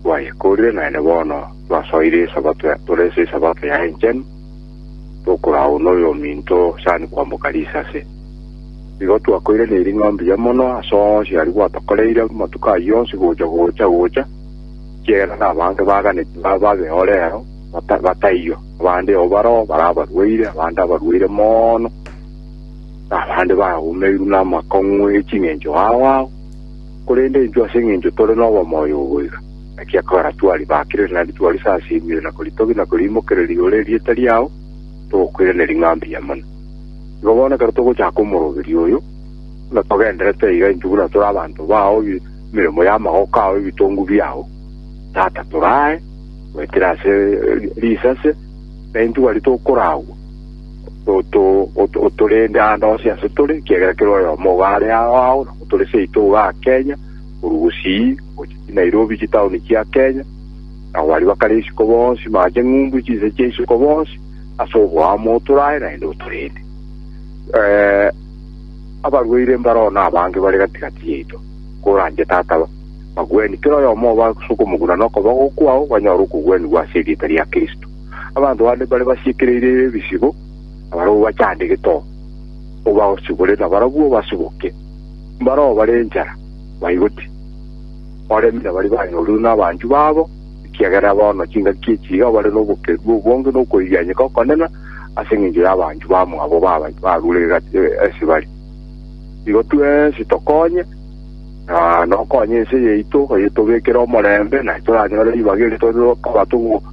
Twayekorire naende bono twasoire Esabato ya, torese Esabato ya enchenu, tokoragwa noyominto sani kwamboka risase. Igo twakoiranirie ring'ondi ya mono ase onsi aria gwatokoreire amatuko ayio onsi gocha gocha gocha, ekiagera nabange baganeti ba babe o rero bata, bataiyo, abande o baroo bare abarwaire, abande abarwaire mono, na abande baumeirwe namakong'u e ching'encho ao ao. Korende intwe ase engencho tore nobomoyo oboiga, naki ekogera twari bakirire naende twarisasimire na koritogia na koriimokereria igoro erieta riao, togokoiraneria ng'a mbuya mono. Igo bono ekero togochaka omoroberio oyo, buna togenderete iga intwe buna tore abanto bao, emeremo y'amagoko ao, ebitongu biao, Tata, toraae goetera ase risase, na intwe baria tokoragwa. oto otorende ande onsi ase tore, ekiagera kera oyomo ogo are ao ao, nabo tore seito iga aa Kenya, korwa Gusii gocha Chinairobi chitaoni chia Kenya, nabo baria bakare isiko bonsi mara ching'umbu chinse chia isiko bonsi, ase oboamo otorae naende otorende. Eh, abarwaire mbaroo na abange bare gati gati yaito, koranche Tata ba- bagweni, kera oyomo oba ase okomoguna na okoboko kwao banyore okogwenigwa ase erieta ria Kristo. Abanto bande mbare basiekereire ebisibo, na barabwo bachande getogo, obasubore, na barabwo obasuboke. Mbaroo bare enchara, baigoti, baremi, na baria banyorire nabanchwa babo, ekiagera bono chingaki echi iga bare nobokendu obonge na okoirianyeka okonene ase engencho y'abanchwa bamwabo barure ase bare. Igo twensi tokonye, na nokonye ense yaito, oyetobekere omorembe, na toranyore ribaga eri tore koba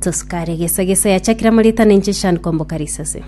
Tosukare gesa gesa yachakire amo ritana inche shan komboka risase.